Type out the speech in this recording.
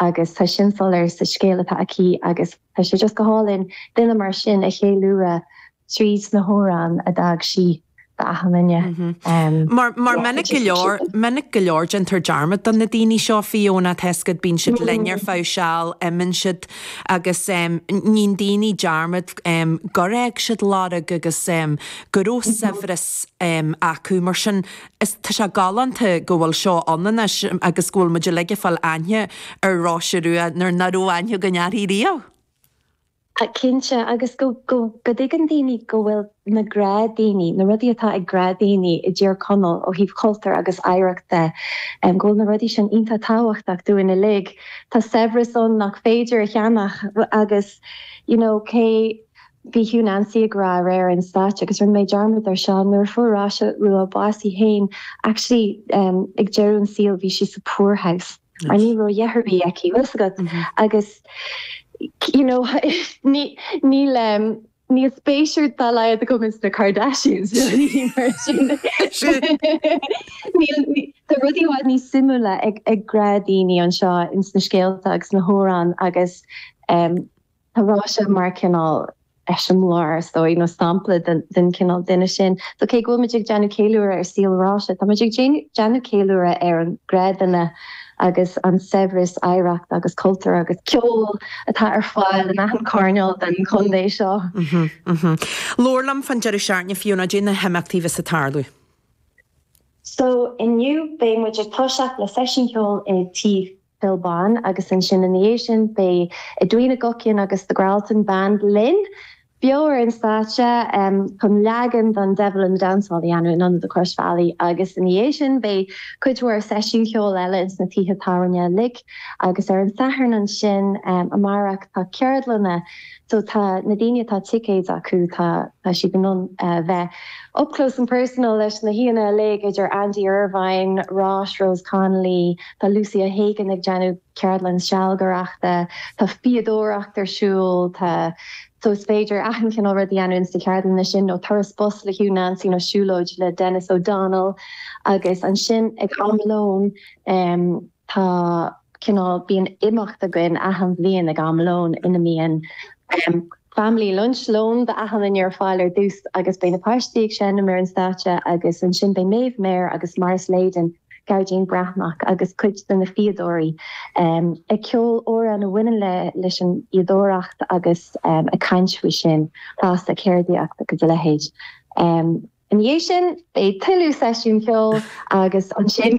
Agus tá sin soiléir sa scéal atá aici agus tá sé just go hálainn duine mar sin a cheiliúradh tríd na hamhráin a d'fhág sí d'achan duine. Mar minic go leor, minic go leor déantar dearmad do na daoine seo, Fiona, tá a fhios agat, bíonn siad linn ar feadh seal, imíonn siad agus níonn daoine dearmad gur fhág siad lorg agus go raibh saibhreas acu. Mar sin Is tá sé galánta go bhfuil seo ann anois agus go bhfuil muid uilig ag fáil aithne ar Róise Rua nuair ná raibh aithne againn uirthi riamh. Cinnte, agus go dtuigeann daoine go bhfuil na gnáthdhaoine, na rudaí atá ag gnáthdhaoine i dTír Chonaill ó thaobh chultúir agus oidhreacht de, go bhfuil na rudaí sin iontach tábhachtach dúinn uilig. Tá saibhreas ann nach féidir a cheannach agus you know cé. Bhí Hugh Nancy ag rá aréir ar an stáitse, agus rinne mé dearmad air seo, nuair a fuair Róise Rua bás í féin, actually ag deireadh an saoil bhí sí sa poor house. Mar ní raibh a dhath ar bith aici, bhfuil 's agat? Agus you know ní níl ehm níl spéis ar dá laghad agam ins na Kardashians Tá rudaí i bhfad níos suimiúla ag ag gnáthdhaoine anseo ins na scéalta agus na hamhráin agus ehm Tá Róise mar cineál eiseamláir, is dóigh, nó sampla den chineál duine sin. So cé go bhfuil muid ag déanamh ceiliúradh ar saol Róise, tá muid ag déanamh ceiliúradh ar an ghnáthdhuine agus an saibhreas oidhreachta agus cultúir agus ceoil atá ar fáil in achan choirneál den chontae seo. Labhair liom fán deireadh seachtaine Fiona cad é na himeachtaí a bheas ag tarlú. So inniu beidh muid ag toiseacht le seisiún ceoil i dTigh. Phil Bán agus ansin ina dhiaidh sin beidh Edwina Guckian agus The Gralton Band linn beo ar an stáitse chun leagan den Devil in the Dancehall a dhéanamh in Ionad an Chrois Bhealaigh agus ina dhiaidh sin beidh cuid mhór seisiún ceoil eile ins na tithe tábhairne uilig agus ar an Satharn ansin amárach tá ceardlanna So tá na daoine atá ticéid acu, tá siad in ann bheith up close and personal leis na haíonna uilig idir Andy Irvine, Rosh, Rose Connolly, tá Lucy O'Hagan ag déanamh ceardlann sealgaireachta, tá fíodóireacht ar siúl, tá. So is féidir achan cineál rud a dhéanamh ins na ceardlanna sin nó turas bus le Hugh Nancy nó siúlóid le Denis O'Donnell agus ansin ag am lóin, eh, Tá cineál, bíonn imeacht againn achan bhliain ag am lóin ina mbíonn family lunch, lón d'achan duine ar fáil ar dtús agus beidh na páistí ag seinm ar an stáitse agus ansin beidh Méabh Meir agus Maurice Leyden, Gearóidín Breathnach agus cuid de na fíodóirí ag ceol amhrán a bhaineann leis an fhíodóireacht agus ag caint faoi sin fosta, ceardaíocht agus a leithéid. Ina dhiaidh sin beidh tuilleadh seisiúin cheoil agus ansin.